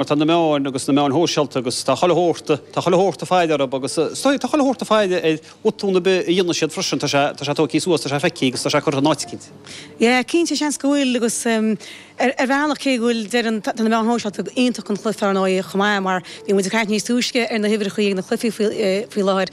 mar tá na meáin agus na meáin shóisialta agus tá chuile shórt, tá chuile shórt ag faire orthu agus is dóigh, tá chuile shórt ag faire ar bhotún ar bith a dhéanann siad freisin, tá sé, tá sé tógtha suas, tá sé feicthe agus tá sé curtha in áit éicint. Yeah, cinnte, seans go bhfuil agus ar bhealach cé go bhfuil, deireann, tá na meáin shóisialta iontach don chluife ar ndóigh chomh maith mar bhí muid ag caint níos túisce ar na huimhreachaí ag na cluichí faoi láthair,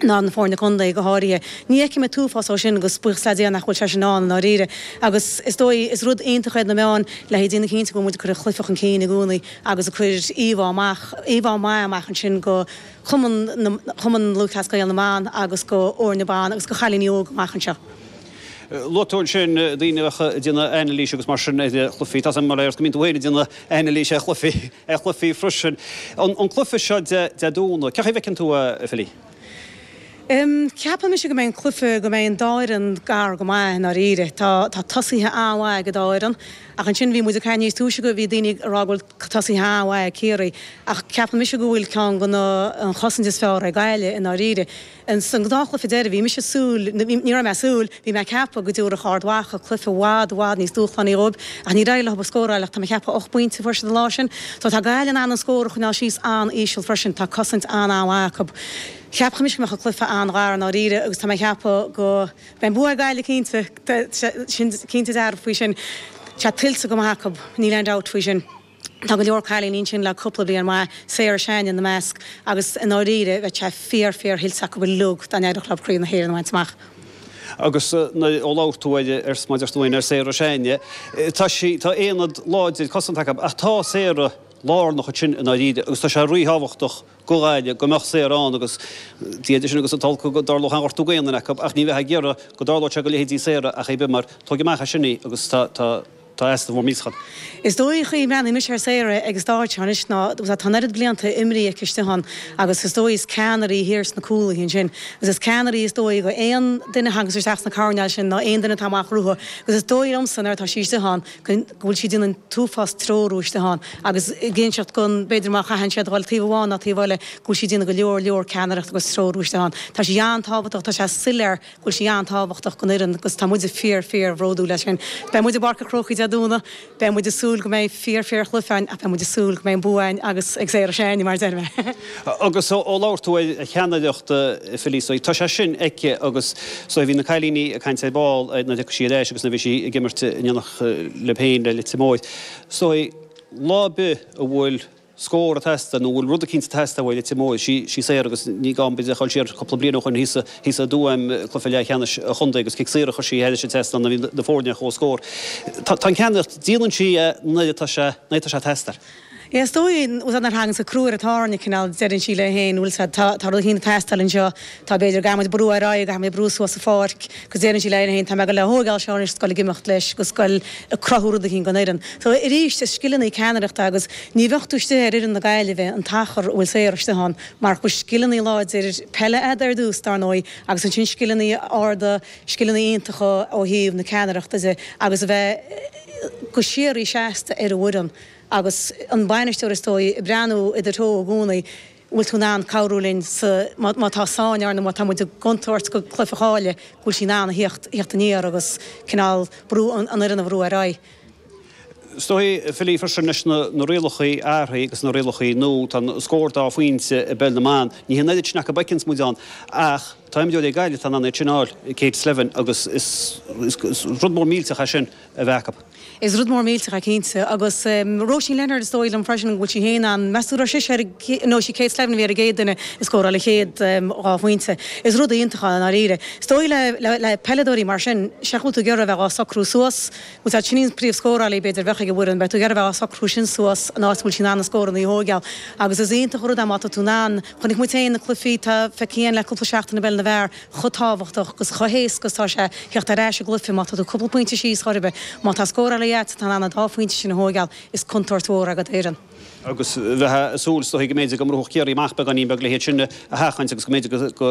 ná na foirne contae go háirithe. Ní fheicim an t-uafás dó sin agus buíochas le Dia nach bhfuil sé sin ann i ndáiríre. Agus is dóigh, is rud iontach iad na meáin le haghaidh déanamh cinnte go bhfuil muid ag cur an chluife chun cinn i gcónaí agus ag cur íomhá amach, íomhá maith amach ansin go Cumann na, Cumann Lúthchleas Gael na mBan agus go fhoirne na mban agus go chailíní óga amach anseo. Luaigh tú ansin daoine a bheadh ag déanamh anailís agus mar sin ar chluichí. Tá a fhios agam go mbíonn tú féin ag déanamh anailís ar chluichí. ar chluichí freisin. An cluiche seo Dé Domhnaigh, cén chaoi a bhfeiceann tú é, Philly? Ceapaim mise go mbeidh an cluiche, go mbeidh an dá fhoireann gar go maith i ndáiríre. Tá tosaithe an-mhaith ag an dá fhoireann ach ansin bhí muid ag caint níos túisce go bhí daoine ag rá go bhfuil tosaithe an-mhaith ag Ciarraí ach ceapaim mise go bhfuil ceann de na, an chosaint is fearr ag Gaillimh i ndáiríre. Ins an gnáthchluife deiridh, bhí mise ag súil, ní raibh mé ag súil, bhí mé ag ceapadh go dtabharfadh Ard Mhacha cluife i bhfad, i bhfad níos dúshlánaí dhóib, ach níor éirigh leothub a scóráil ach tá mé ag ceapadh ocht bpointe a fuair siad an lá sin. So tá Gaillimh in ann an scór a choinneáil síos an-íseal freisin, tá cosaint an-an-mhaith acu. Cheapfadh mise go mbeadh an cluife an-ghar i ndáiríre agus tá mé ag ceapadh go mbeidh bua ag Gaillimh cinnte, tá sin cinnte dearfa faoi sin. Tá tuillte go maith acu, níl aon dabht faoi sin. Tá go leor cailíní ansin le cúpla bliain mhaith, Sarah Sheáin ina measc, agus i ndáiríre bheadh sé fíor, fíor thuillte acu uilig dá n-éireodh leo Craobh na hÉireann a bhaint amach. Agus ó labhair tú air is muid ag trácht ar, ar Sarah Sheáin, tá sí, tá aonad láidir cosanta acu ach tá Sarah lárnach ansin i ndáiríre agus tá sé rí-thábhachtach go Gaillimh go mbeadh Sarah ann agus Dia idir sinn agus an t-olc go dtarlódh aon ghortú d'aon duine acu ach ní bheifeá ag iarraidh go dtarlódh sé go leithéidí Sarah ar chaoi ar bith mar tóg amach as sin í agus tá, tá. Tá easnamh mór millteach ann. Is dóigh an chaoi a mbreathnaíonn mise ar Sarah ag an stáitse seo anois ná tá an oiread blianta imeartha aici istigh ann agus is dóigh is ceannaire í thiar sna cúlaithe ansin agus is ceannaire í is dóigh go aon duine thaganns isteach sna coirnéil sin ná aon duine atá amach uathu agus is dóigh liomsa nuair atá sí istigh ann go bhfuil sí ag déanamh an t-uafás treorú istigh ann agus ag inseacht go b'fhéidir má chaitheann siad a dhul taobh amháin ná taobh eile go bhfuil sí ag déanamh go leor leor ceannaireacht agus treorú istigh ann tá sí an-tábhachtach tá sé soiléir bhfuil sí an-tábhachtach don fhoireann agus tá muide fíor, fíor bhródúil as sin. Beidh muid i bPáirc an Chrócaigh Dé Domhnaigh, beidh muid ag súil go mbeidh fíor, fíor chluiche ann ach beidh muid ag súil go mbeidh an bua againn agus ag Sarah Sheáin, mar a deir mé! Agus ó labhair tú ar cheannaireacht Philly, so tá sé sin aici agus so bhí na cailíní ag caint ar ball nuair a thiocfaidh sí ar ais agus nuair a bhí sí ag imirt in éineacht libh féin le Leitir Móir, so lá ar bith a bhfuil. scór ag teastáil nó an bhfuil rud eicínt ag teastáil a ti móidh. Siofra agus ní gá an bid a chur siar cúpla bliain ó shoin thíos i dTuaim, cluiche leathcheannais an chontae agus cic saor a chuir sí air a bhí ag teastáil bhí na foirne ar comhscór. Tá tá an cheannaireacht, déanann sí é nuair atá sé nuair atá sé ag teastáil. Is dóigh, an úsáid nár thagann sa cruaire tábhairne cineál deireann sí léi féin bhuel sa tá tá rud eicínt ag teastáil anseo. Tá b'fhéidir go mbíonn muid brú ar aghaidh ach muid ag brú suas sa pháirc agus déarfainn sí léi féin, tá mé ag dul á thógáil seo anois, ag goil ag imeacht leis ag goil ag cruthú rud eicínt don fhoireann. So arís is scileanna ceannaireachta agus ní bheadh tú istigh ar fhoireann na Gaillimhe an t-achar a bhfuil saor istigh ann mara bhfuil scileanna láidir peile agat ar dtús dar ndóigh agus ansin scileanna arda, scileanna iontacha ó thaobh na ceannaireachta de agus a bheith go síoraí seasta ar an bhfoireann agus an bainisteoir is dóigh ag breathnú i do threo i gcónaí. an bhfuil tú in ann cabhrú linn sa, má, má tá sáinn againn nó má tá muid i gcontúirt i gcluife ar bith go bhfuil sí in ann a theacht, a theacht aniar agus cineál brú an, an fhoireann a bhrú ar aghaidh. Is dóigh, feileann sé freisin leis na, na rialacha athraithe agus na rialacha nua, tá an scór dá phointe i bpeil na mban, ní hin an oiread sin acu a fheiceanns muid ann ach tá imreoirí ag Gaillimh atá in ann iad sin a fháil, Kate Slevin agus is, is, is rud mór millteach é sin. a bheith acu. Is rud mór millteach é cinnte. Agus Róisín Leonard, is dóigh liom freisin go bhfuil sí féin, measaim go raibh sise ar an gcéad, nó is í Kate Slevin a bhí ar an gcéad duine a scóráil an chéad dhá phointe. Is rud iontach é i ndáiríre. Is dóigh le peileadóirí mar sin, sea, bhfuil tú ag iarraidh a bheith á socrú suas, úsáid, sin í an príomhscórálaí b'fhéidir a bheadh ag an bhfoireann, bheadh tú ag iarraidh a bheith á socrú sin suas in áit a bhfuil sí in ann na scóranna a thógáil. Agus is iontach an rud é má tá tú in ann, chonaic muid féin sna cluichí, tá, feicfidh tú féin le cúpla seachtain i bpeil na bhfear, chomh tábhachtach agus chomh héasca is atá sé a theacht ar ais i gcluife má tá tú cúpla pointe síos chor ar bith. Má tá scórálaí agat atá in ann na dá phointe sin a thóigeáil, is contúirt mhór é ag foireann. agus bheifeá ag súil is dóichí go mbeidh go mbrúfaidh Ciarraí amach beagáinín beag le hiad sin a sheachaint agus go mbeidh go